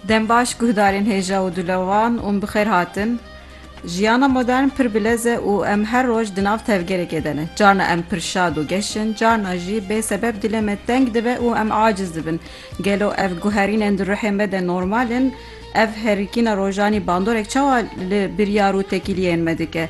Dembaş guhdarên hêja û dûle wan ûn bi xêr hatin. Jiyana modern pir bilez e û em her roj di nav tevgerekê de ne. Carna em pir şad û geş in, carna jî bê sebeb dilê me teng dibe û em aciz dibin. Gelo ev guherînên di ruhê me de normal in? Ev herikîna rojanî bandorek çawa li biryar û tekîliyên me dike?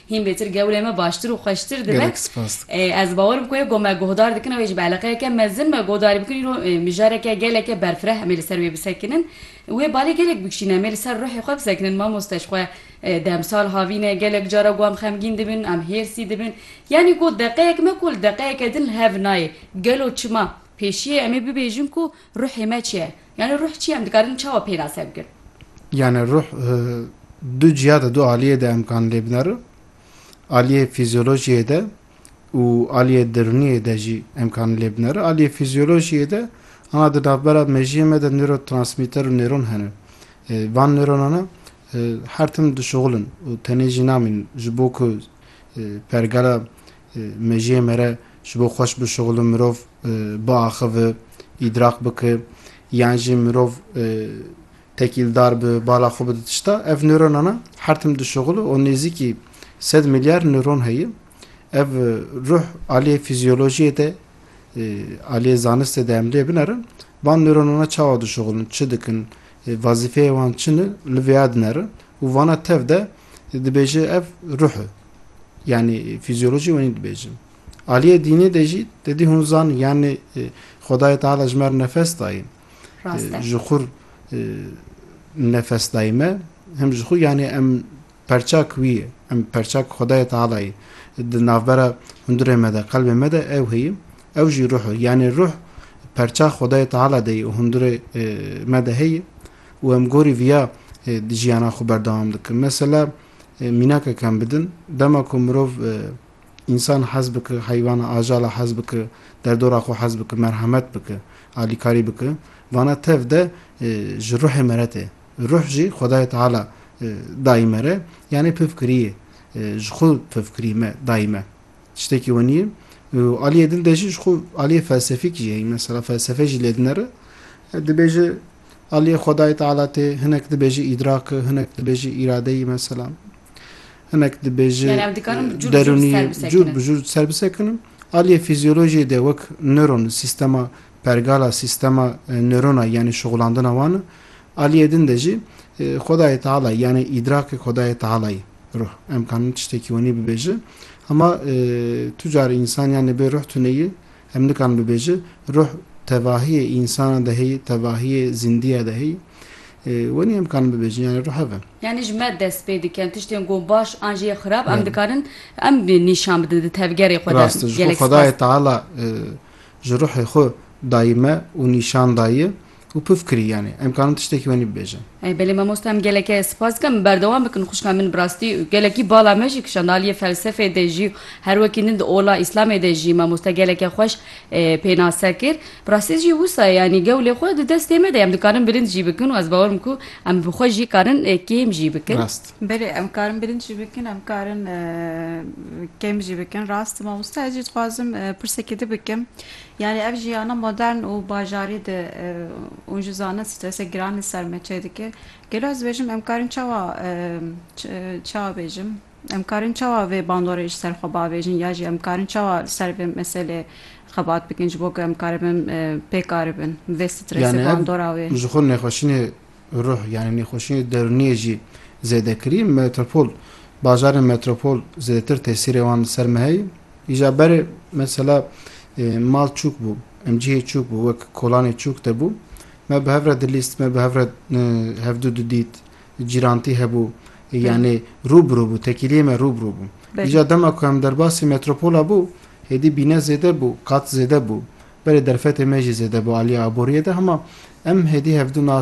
Hîn bêtir gewrê me baştir û xweştir dibe. Gelek spas dikim. Ez bawer im ku yê ku me guhdar dikin ew ê ji ber eleqeyeke mezin me guhdarî bikin îro mijareke geleke berfireh em ê li ser wê bisekinin. Wê balê gelek bikişîne em ê li ser ruhê xwe bisekinin mamoste ji xwe demsal havîne gelek cara ku em xemgîn dibin em hêrsî dibin yanî ku deqeyek me ku li deqeyeke din li hev nayê gelo çima pêşiyê em ê bibêjin ku ruhê me çi ye. Yanê ruh çi ye? Em dikarin çawa pênase bikin? Yanê ruh du ciha de, du aliyê de em kan lê binerin. Aliyê fîzyolojiyê de û aliyê dirûniyê de jî em kan lê binerin. Aliyê fîzyolojiyê de ana di navbera mejiyê me de nêrotransmîter û nêron hene. Van nêronana her tim dişuxulin û tenê jî namînin ji bo ku pergala Mejiyê me re ji bo xweş bişuxulin mirov biaxive, îdrak bike yan jî mirov tekîldar bi bala xwe bide tişta ev nöronana her tim dişuxule û nêzîkî sed milyar nöron heye. Ev ruh aliyê fîzyolojiyê de aliyê zanistê de em lê binerin van nöronana çawa dişuxulin, çi dikin, vazîfeyê wan çi ne li vêya dinerin û vana tev de Dibêje ev ruh e. Yanî fîzyolojî wenî dibêjin. Aliyê dînê de jî te dî hûn zan yanî e, Xwedayê Teala ji mer nefes dayîn. Rast e. Ji xur e, nefes dayî me hem ji xwe yanî em perçak wî ye. Em perçak Xwedayê Teala yê. Di navbera hundirê me de, qelbê me de ew heye. Ew jî ruh e. Yanî ruh perçak Xwedayê Teala de yê û hundirê e, me de heye. û em gorî viya jiyana xwe berdewam dikin. Mesela mînakek em bidin, dema ku mirov însan hez bike, heywana, ajala hez bike, derdora xwe hez bike, merhemet bike, alîkarî bike, vana tev de ji ruhê me re tê. Ruh jî Xwedayê Teala dayî me re, yanê pivkirî yê, ji xwe pivkirî me dayî me. Tiştekî we nîyê. Aliyê dil de jî ji xwe aliyê felsefîk jî heye. Mesela felsefe jî lê dinere. Dibêje aliyê Xwedayê Teala tê, hinek dibêje îdrak, hinek dibêje îradeyî mesela. Hinek dibêje derûnî cûr bi cûr ser bisekinim. Aliyê fizyolojiyê de wek nöron, sîstema pergala, sîstema nörona yanî şixulandina wan e. Aliyê din de jî Xwedayê Teala yanî îdrakê Xwedayê Tealayê. Ruh. Em kanin tiştekî wenî bibêjin. Hema tu carî însan yanî bê ruh tune yî, em nikanin bibêjin. Ruh tevahiyê însanan de heyî, tevahiyê zîndiya de heyî. Wenî em kanin bibêjin yanî ruh hev e. Yanî ji me dest pê dikin tiştên ku baş an jî yê xirab em dikarin em nîşan bidin di tevgerê xwe de. Rast e. Ji xwe Xwedayê Teala ji ruhê xwe dayî me û nîşan dayî. Û puf kirî yanî em karin tiştekî wenî bibêjin. Ey belê mamosta em gelekê spas dikim berdewam bikin xwişka min bi rastî gelekî bala me jî kişand aliyê felsefê de jî her wekî din di ola îslamê de jî mamosta gelekê xweş pênase kir bi rastî jî wisa yanî gewlê xwe di destê me de ye em dikarin bilind jî bikin û ez bawer bikim ku em bi xwe jî karin kêm jî bikin. Rast. Belê em karin bilind jî bikin em karin kêm jî bikin rast mamosta ez jî dixwazim pirsekê di bikim Yanî ev jiyana modern û bajarî di û ji zanin strese giran li ser me çê dike. Gelo ez dibêjim em karîn çawa çawa bêjim? Em karîn çawa vê bandorê ji ser xwe bavêjin ya jî em karîn çawa li ser vê meselê xebat bikin ji bo ku em karibin pêkaribin vê strese bandora wê? Yanî ev ji xwe nexweşînê Ruh yanî nêxweşiyê derûniyê jî zêde kirî. Metropol, bajarên metropol zêdetir tesîrê wan li ser me heye. Îja berê mesela mal çûk bû, em cihê çûk bû wek kolanê çûk de bû. Me bi hev re dilîst, me bi hev re hevdû didît, cîrantî hebû. Yanî rû bi rû bû, tekîliyê me rû bi rû bû. Îja dema ku em derbasî metropola bû, hêdî bîne zêde bû, qat zêde bû. Berê derfetê me jî zêde bû aliyê aboriyê de hema em hêdî hevdû nas